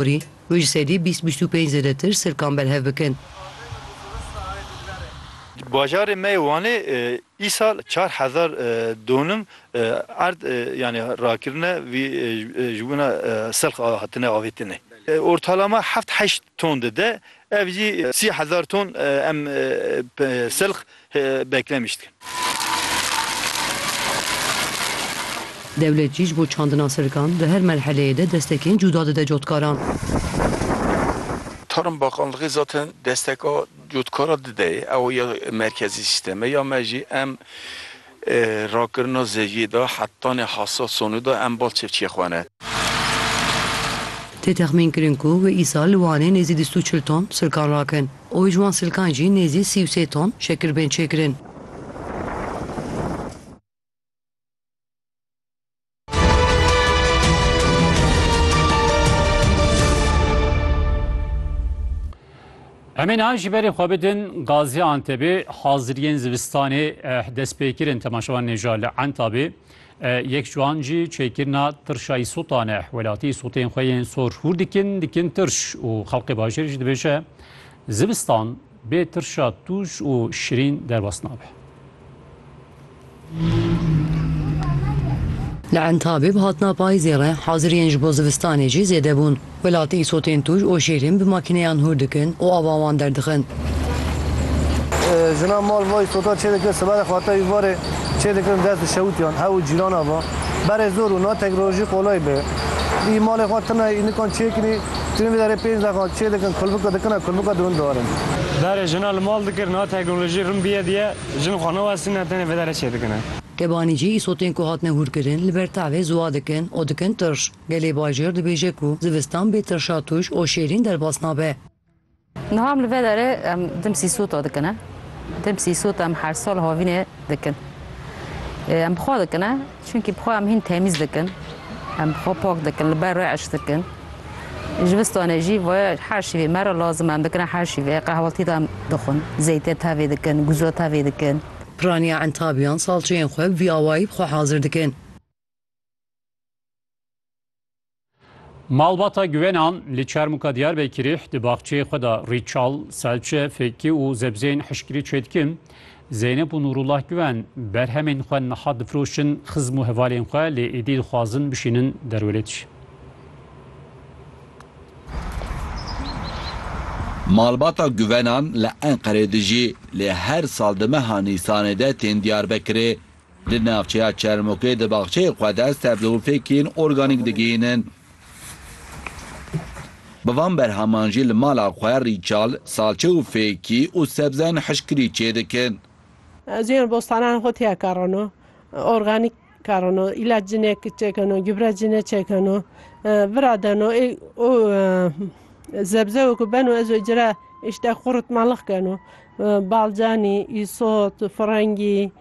Kurî û ji sedî bîst bîst û pênc zêdetir sirkan berhev bikin. Di bajarê me yê Wanê îsal çar hezar donum erd yanî rakirine vî ji wina selx hatine avêtine. Ortalama heft heşt ton dide ev jî sî hezar ton em selx beklemiştin. Dewlet jî ji bo çandina sirkan di her merheleyê de destekên cuda dide cotkaran. Tarm Bakanlixê zaten desteka cotkara dide ye, ew ya merkezî sîstem e ya me jî. Em Rakirina zeviyê de hetanê hesad sonê de em bal çevçiyê xwe ne. Tê texmîn kirin ku wê îsal li Wanê nêzî dîst û çil ton silkan rakin û ji wan silkan jî nêzî sî û sê ton şekir bên çêkirin. Em ê niha ji berê xwe bidin Gazî Antebê haziriyên zivistanê destpêkirin temaşevan nêja li Entabê yek ciwan jî çêkirina tirşa îsotan e welatî îsotên xwe yên sor hûr dikin dikin tirş û xelqê bajêr jî dibêje zivistan Bê tirşa tûj û şirîn derbas nabe. Li Entabê bi hatina payîzê re haziriyên ji bo zivistanê jî zêde bûn. Welatî îsotên tûj û şêrîn bi makîneyan hûr dikin û ava wan derdixin. Jinan mal va îsota çê dikin, siberê xwate wî varê çê dikin dest bi şewitiyan, hev û cîrana va. Berê zor û na tek rojî qolay be. Î malê xwe tune înikan çê kinî, Jinê bi derê pênc daxan çê dikin kulbika dikin a kulbika di win darin. Darê jina li mal dikir niha teknolojî rin biye diye jin xwe newestîne tenê vê derê çê dikine. Tebanî jî îsotên ku hatine hûrkirin li ber tavê ziwa dikin û dikin tirş. Gelê bajêr dibêje ku zivistan bê tirşa tûj û şêrîn derbas nabe. Niha em li vê derê em dimsî sûta dikin e. Dimsî sûta em her sal havînê dikin. Em bi xwe dikin e, çunkî bi xwe em hîn temîz dikin. Em bi xwe pak dikin, li ber rê eş dikin. Ji vistanê jî vê her şîvê me re lazim em dikin e, her şîvê qehweltî de em dixwin. Zeytê tevê dikin, guzo tevê dikin. Piraniya entabiyan salçeyên xwe bi vî awayî bi xwe hazir dikin. Malbata Guwenan li Çermûka Diyarbekirê di baxçeyê xwe de rîçal, selçe, fêkî û zebzeyên hişkirî çêdikin. Zeynep û Nûrullah Guwen berhemên xwe niha difiroşin xizm û hevalên xwe lê êdî dixwazin bişînin derwelêt. Malbata Guwenan li Enqerê dijî lê her sal di meha Nîsanê de tên Diyarbekirê. Li navçeya Çermûkê di baxçeyê xwe de sebze û fêkên organîk digihînin. Bi van berheman jî li mala xwe rîçal, salçe û fêkî û sebzeyên hişkirî çêdikin. Ez yên bostanan xwe têya karino, organîk karino, îlac cinê çêkeno, gübre cinê çêkeno, vira deno û sebze weke beno ez ê cire îşte quritmalix keno, balcanî, îsot, firengî.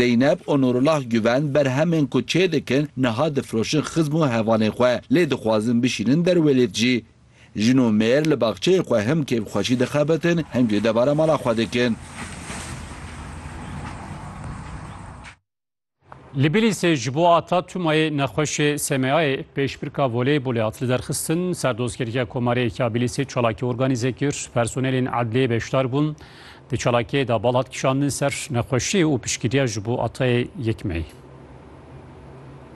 Zeynep û Nûrullah Guven berhemên ku çêdikin niha difiroşin xizm û hevalên xwe lê dixwazin bişînin derwêlêt jî. Jin û mêr li baxçeyê xwe him kêfxweşî dixebitin him jî debara mala xwe dikin. Li Bilîsê ji bo ata Tumayê nexweşê SMA'yê pêşbirka voleybolê hat li derxistin. Serdozgeriya Komareyek ya Bilîsê çalakî organîze kir. Personelên edliyê beşdar bûn. Di çalakiyê de bal hat kişandin ser nexweşiyê û piştgiriya ji bo atayê yek meyî.